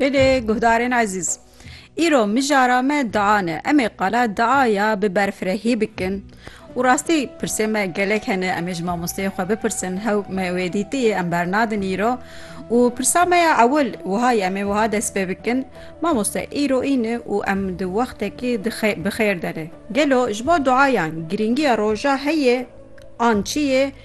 Bilê guhdarên ezîz. Îro mijara me diane em ê qala diaya bi berfirehî bikin û rastî pirsê me gelek hene em ê ji mamosteyê xwe bipirsin hew me wê dîtiyê em bernadin îro û pirsa me ya ewil wiha ye em ê wiha dest pê bikin mamoste îro îni û em di wextekî bi xêr derê gelo ji bo duayan girîngiya roja heye an çi yê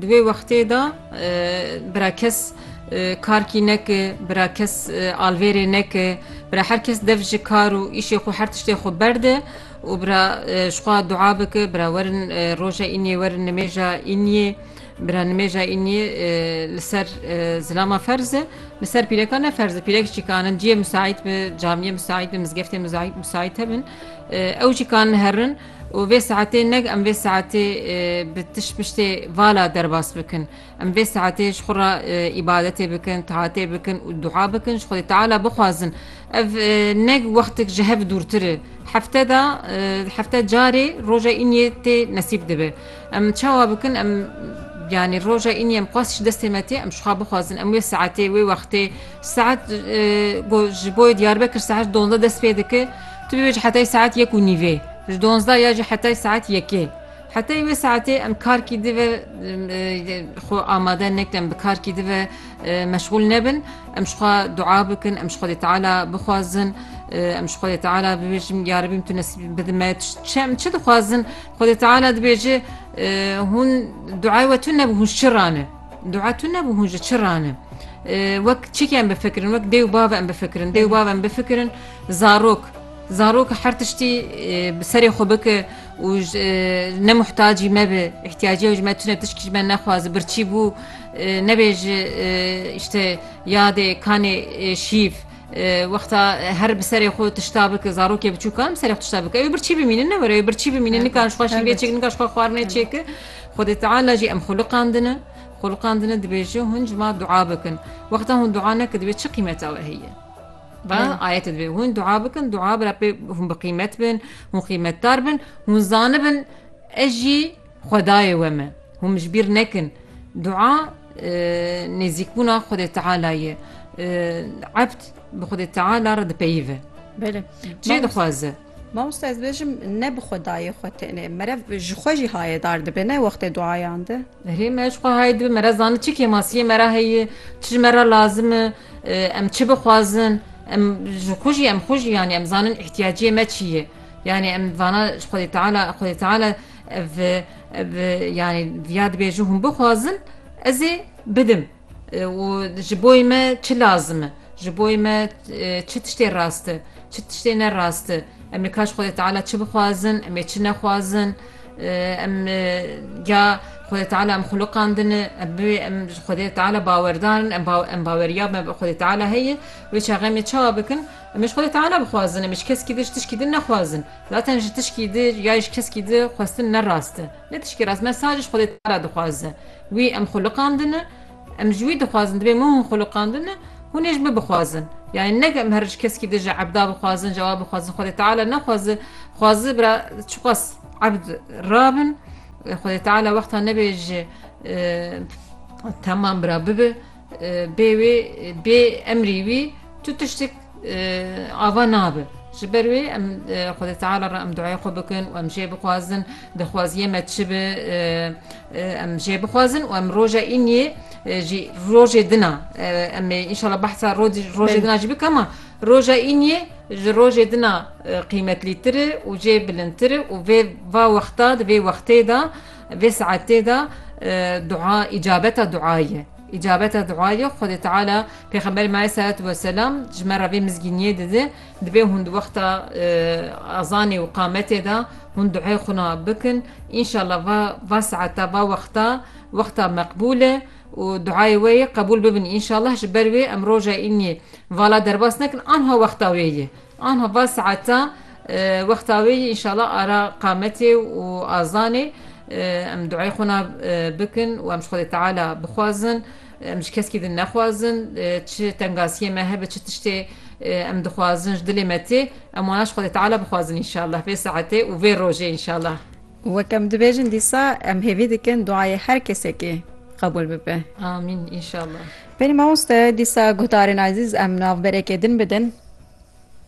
Di wê wextê de bira kes karkî neke, bira kes alvêrê neke, bira her kes dev ji kar û îşê xwe her tiştê xwe berde û bira ji xwe dua bike, bira werin roja îniyê werin nimêja îniyê. Bira nimêja îniyê li ser zilama ferz e, li ser pîreka ne ferz e. Pîrek jî kanin ciyê misaîd bi, camiyê misaîd bi, mizgeftê misaîd hebin. Ew jî kanin herin. Û vê saetê neg em vê saetê bi tişt piştê vala derbas bikin. Em vê saetê ji xwe re îbadetê bikin, taetê bikin û dua bikin ji Xwedê Teala bixwazin. Ev neg wextik ji hev dûrtir e. Hefte de hefte carê roja îniyê tê nesîb dibe. Em çawa bikin em yanî roja îniyê em qas ji destê me tê em ji xwe bixwazin em wê saetê wê wextê saet ji bo Diyarbekir saet donde dest pê dike. Tibê ji hetay saet yek û nîvê, ji donzda ya jî hetay saet yekê. Hetay wê saetê em karkî di ve xwe amade nekin, bi karkî di ve meşxûl nebin. Em ji xwe dua bikin, em ji Xwedê Teala bixwazin, em ji Xwedê Teala bibêjin yaribî min tu nesîb bide me çi dixwazin. Xwedê Teala dibêje hûn duayê we tune bi hûn ji çi rane. Dua tune bi hûn ji çi rane. Wek çekê em bifikirin, wek dê û bavê em bifikirin, dê û bavê em bifikirin. Zarok, zarok her tiştî bi serê xwe bike û ne muhtacî me bi, îhtiyacê ew ji me tune tişkî ji me nexwaze, birçî bû nebê ji îşte yadê kanê şîv wexta her bi serê xwe tişta bike zarokê biçûkan bi serê xwe tişta bike ew birçî bimînin ne were ew birçî bimînin nika ji xwe şîvê çêkin nika ji xwe xwarinê çêke Xwedê Teala jî em xweliqandine xweliqandine dibêje hûn ji ma dua bikin wexta hûn dua neke divê çi qîmeta we heye. Ve ayet divê hûn dua bikin dua bi pê hûn bi qîmet bin hûn qîmetdar bin hûn zanibin ez jî xwedayê we me hûn ji bîr nekin dua e, nêzîkbûna xwedê tealayê e, ebd bi xwedê teala re dipeyîve. Belê. Çê dixwaze. Mamosta ez bêjim ne bi xwe dayê xwe tenê merev ji xwe jî hayedar dibe ne wextê duayan de. Herî me ji xwe hayê dibe mere zanî çi kêmasiyê me ra heye çi ji me ra lazim e em çi bixwazin em ji xwe jî em xwe jî yanî em zanin îhtiyaciyê me çi ye. Yani em vana ji Xwedê Teala Xwedê Teala ev ev yani viya dibêjin hûn bixwazin ez ê bidim. Û ji boî me çi lazim e? Ji boî me çi tiştê rast e? Çi tiştê ne rast e? Em li karşî Xwedê Teala çi bixwazin? Em ê çi nexwazin? Em ya Xwedê Teala em xuluqandine? Em bivê em ji Xwedê Teala bawerdar in? Em baweriya me bi Xwedê Teala heye? Wê çaxa em ê çawa bikin? Em ê ji Xwedê Teala bixwazin. Em ê ji keskî di ji tişkî di nexwazin. Zaten ji tişkî di ya ji keskî di xwestin ne rast e. Ne tişkî rast me sacî ji Xwedê tê re dixwaze. Wî em xwe liqandine. Em ji wî dixwazin dibê min hûn xwe liqandine, hûn ê ji min bixwazin. Yanî ne em her ji keskî di ji ebda bixwazin, ji awa bixwazin. Xwedê Teala nexwaze, xwaze bira çiqas ebd rabin. Xwedê Teala wexta nebê ji temam bira bibe. Bê wê, bê emrî wî tu tiştek ava nabe. Ji ber wê em Xwedê Teala re em duayê xwe bikin û em jê bixwazin daxwaziyê me çi be em jê bixwazin û em roja îniyê jî rojê din a em ê înşala behsa rojê din a jî bikin ma roja îniyê ji rojê din a qîmetlîtir e û jê bilindtir e û vê va wexta di vê wextê de Vê saetê de dua îcabeta dua ye. Îcabeta dua ye Xwedê Teala Pêxemberê me aleyh selatü weselam ji me re vê mizgîniyê dide. Divê hûn di wexta ezanê û qametê de hûn duayê xwina bikin. Înşallah va va saeta va wexta wexta meqbûl e û duayê we yê qebûl bibin înşallah. Ji ber wê em roja îniyê vala derbas nekin anha wexta wê yê. Anha va saeta wexta wê yî înşala ara qametê û azanê em duayê xwe na bikin û em ji Xwedê Teala bixwazin, em ji keskî din nexwazin, çi tengasiyê me hebe çi tiştê em dixwazin ji dilê me tê em wana ji Xwedê Teala bixwazin înşala vê saetê û vê rojê înşala. Wek em dibêjin dîsa em hêvî dikin duayê her kesekê qebûl bibe. Amîn înşala. Pênî mamoste dîsa guhdarên ezîz em navberekê din bidin.